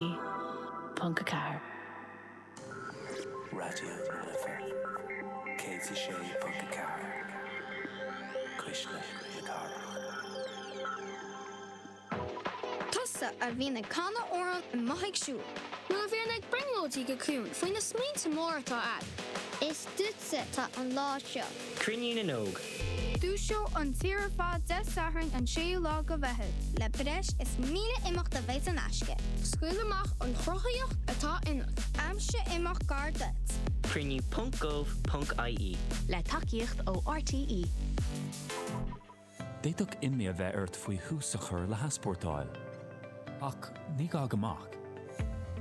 ponc a ceathair. Raidió na Life, céad is a sé ponc a ceathair. Cuisle na Cathrach. Tusa a bhíonn ag canadh amhráin amuigh ag siúl. Nó a bhíonn ag brionglóidí go ciúin faoi na smaointe móra atá a'd. Is duitse atá an lá seo. Cruinniú na nÓg. Dúiseoidh an tír ar fad Dé Sathairn an 6ú lá de Mheitheamh. le breis is 1,000 imeacht a bheidh in aisce. Scaoil amach an chruthaíocht atá ionat. Aimsigh imeacht gar duit. Cruinniú ponc gov ponc ie. Le tacaíocht ó RTÉ. D'fhéadfadh imní a bheith ort faoi thús a chur le heaspórtáil. Ach ní gá go mbeadh.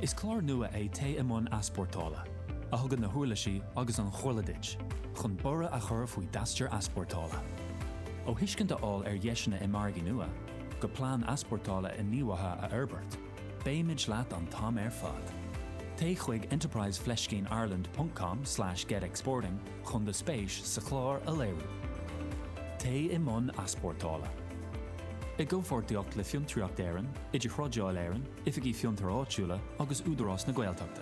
Is clár nua é Téigh i mBun Easpórtála, a thugann na huirlisí agus an chomhairle duit chun borradh a chur faoi d'aistear easpórtála. Ó thuiscint a fháil ar dheiseanna i margaí nua, go plean easpórtála inghníomhaithe a fhorbairt, Beimid leat an t-am ar fad. Téigh chuig enterprise fleiscín ireland.com/getexporting chun do spéis sa chlár a léiriú. Téigh i mbun easpórtála. I gcomhpháirtíocht le Fiontraíocht Éireann, IdirThrádáil Éireann, Oifigí Fiontar Áitiúla agus Údarás na Gaeltachta.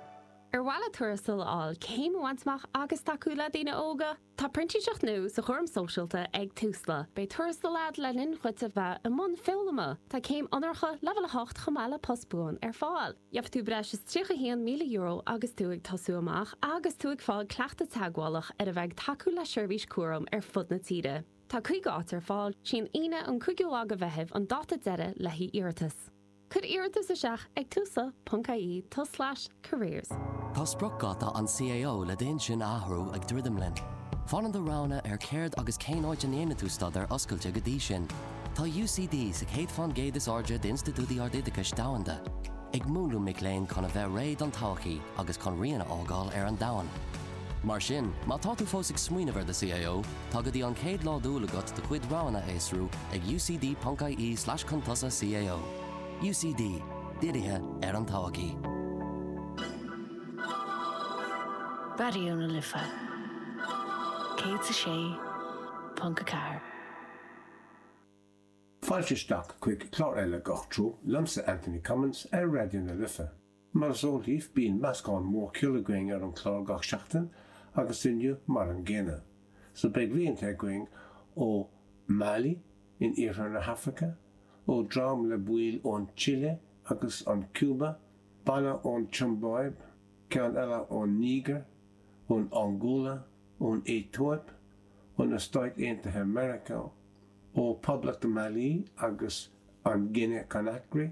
Ar mhaith leat tuarastal a fháil, céim a bhaint amach agus tacú le daoine óga? Tá printíseacht nua sa chúram sóisialta ag Tusla. Beidh tuarastal agat le linn dhuit a bheith i mbun foghlama. Tá céim onóracha Leibhéal 8 chomh maith le post buan ar fáil. Gheobhaidh tú breis is €31,000 agus tú ag tosú amach agus tú ag fáil cleachtadh teagmhálach ar a bheith ag tacú le seirbhís cúraim ar fud na tíre. Tá 50 áit ar fáil. 'Sí an Aoine an 5ú lá de Mheitheamh an dáta deiridh le haghaidh iarratas. Cuir iarratas isteach ag Tusla ponc IE tulslais careers. Tá spriocdháta an CAO le d'intinn a athrú ag druidim linn. Fanann do roghanna ar céard agus cén áit a ndéanann tú staidéar oscailte go dtí sin. Tá UCD sa chéad fán gcéad is airde d'institiúidí ardoideachais domhanda, ag múnlú mic léinn chun a bheith réidh don todhchaí agus chun rian a fhágáil ar an domhan. Mar sin, má tá tú fós ag smaoineamh ar do CAO, tá go dtí an chéad lá d'Iúil agat do chuid roghanna a fhiosrú ag ucd.ie tulslais cao. UCD, dírithe ar an todhchaí. Raidió na Life 106.4. Fáilte isteach chuig clár eile Gach Treo liomsa Anthony Cummins ar Raidió na Life. Mar is eol daoibh, bíonn meascán mór ceoil againn ar an gclár gach seachtain agus inniu mar an gcéanna. So beidh rianta againn ó Mali in iarthar na hAfraice, ó dream le baill ón tSile agus an Cúba, banna ón tSiombáib, ceann eile ón Nígir, ón Angóla, ón Aetóip, ó na Stáit Aontaithe Meiriceá, ó Poblacht Mali agus an Guine Conakry,